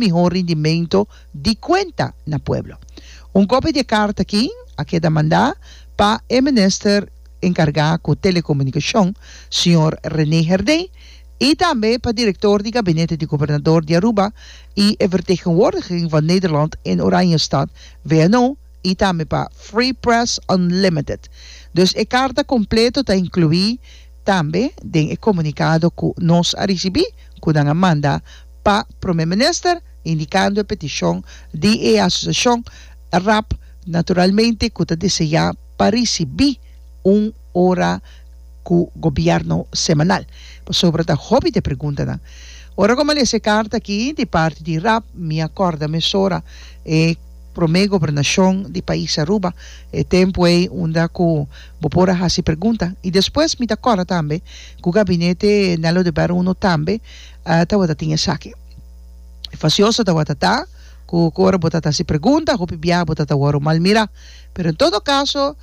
mihó rindimento di kuenta na pueblo. Un kopia di e karta akí a keda mandá pa e minister enkargá ku Telekomunikashon, señor René Herdé, i tambe pa direktor di gabinete di gobernador di Aruba i e vertegenwoordiging van Nederland in Oranjestad, VNO, i tambe pa Free Press Unlimited. Dus e karta kompleto ta inkluí tambe den e komunikado ku nos a risibí ku nan a manda pa Prome Minister, indicando e peticion di e Asociacion rap naturalmente cu ta diseña pa ricibi un ora cu Gobierno semanal. Pasobra ta hopi di e preguntanan. Ora cu mi a lesa e carta aki di parti di rap mi a corda mesora e Prome Gobernacion di pais Aruba, e tempo ey unda cu bo por a haci pregunta. Y despues mi ta corda tambe cu Gabinete Nello de Berra Uno tambe tawata tin esaki. E fasioso tawata ta ku ku ora bo ta ta hasi pregunta hopi biaha bo ta ta wòrdu malmirá. Pero en todo kaso,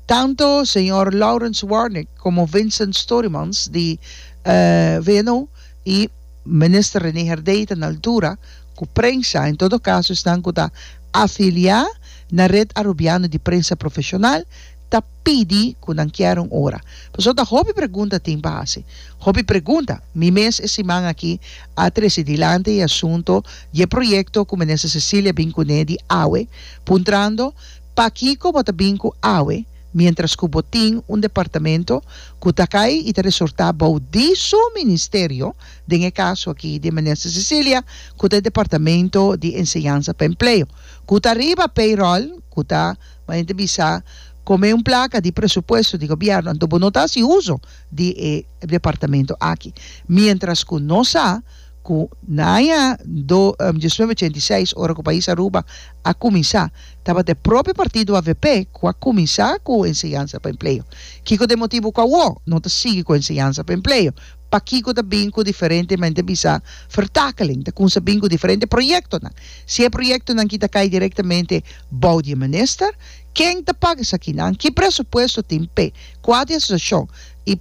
tantu señor Lawrence Warnik komo Vincent Storymans di VNO i Minister Rene Herdey ta na altura ku prensa, en todo kaso esnan ku ta afiliá na Red Arubiano di Prensa Profeshonal, ta pidi cu nan kier un ora. Pasobra ta hopi pregunta tin pa haci. Hopi pregunta. Mi mes e siman aki a trece dilanti e asunto di e proyecto cu Minister Cecilia bin cune di awe, puntrando, Pakico bo ta bin cu awe, mientras cu bo tin un departamento cu ta cay y ta resorta bao di su Ministerio, den e caso aki di Minister Cecilia, cu ta e Departamento di Enseñansa pa Empleo, cu ta riba payroll cu ta. Ma enta bisa, como e un placa di presupuesto di gobierno, anto bo no ta haci uzo di e departamento aki. Mientras cu nos sa cu na aña do diecinueve ochenta y seis, ora cu pais Aruba a cuminsa, tabata e propio partido avp cu a cuminsa cu enseñansa pa empleo. Kico ta e motibo cu awo no ta sigui cu enseñansa pa empleo? Pakiko ta bin ku diferente mente bisa vertakeling? Ta kumsa bin ku diferente proyektonan. Si e proyektonan ki ta kai direktamente bou di e minister, ken ta paga esakinan? Ki presupuesto tin p'e kua di asosiashon? I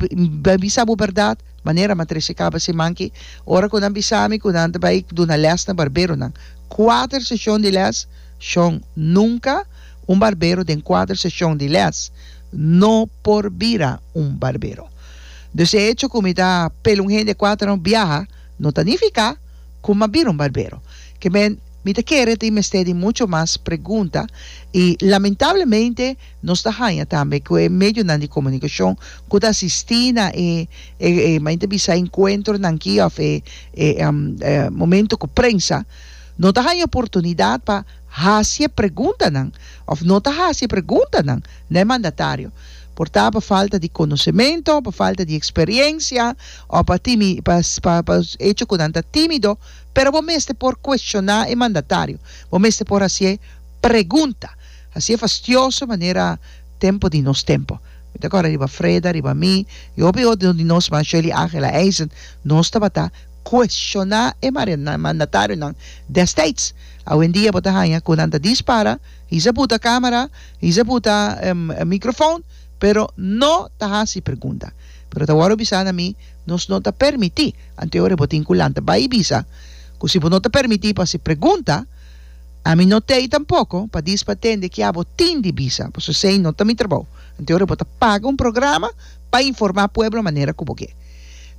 bai bisa bo bèrdat, manera m'a trese kaba siman ki, ora ku nan bisa mi ku nan ta bai duna lès na barberonan, kuater seshon di lès? Shon, Nunka un barbero den kuater seshon di lès no por bira un barbero. Dus e echo ku mi ta pel un hende kua ta no biaha no ta nifiká ku m'a bira un barbero. Kember mi ta kere tin mester di mucho mas pregunta i lamentablemente nos ta haña tambe ku e medionan di komunikashon ku ta asistí na e e mi ta bisa enkuentronan akí òf e e momento ku prensa no ta haña oportunidat pa hasi e preguntanan òf no ta hasi e preguntanan na e mandatario. Por ta pa falta di konosementu, pa falta di eksperiensia, o pa timi, pa, pa, pa echo ku nan ta timido, pero bo mester por kueshoná e mandatario, bo mester por hasi e pregunta, hasi e fastioso manera tempu di nos tempu. Mi ta kòrda riba Freda, riba mi, i hopi otro di nos mas, Shirley Ángela Eisen, nos tabata kueshoná e mandatarionan dèstèds. Awendia bo ta haña ku nan ta dispara. Hizeb u ta camera, hizeb u ta microfoon, pero no ta haci pregunta. Pero ta wor u bisa na mi, nos no ta permiti, anto ora bo tin cu lanta bay y bisa cu si bo no ta permiti pa haci pregunta, ami no t'ey tampoco pa diis pa tende kia bo tin di bisa, pasobra esey no ta mi trabao. Anto ora bo ta paga un programa pa informa pueblo manera cu bo ke.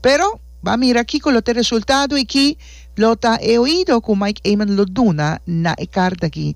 Pero ba mira kico lo t'e resultado y ki lo ta e oido cu Mike Eman lo duna na e carta aki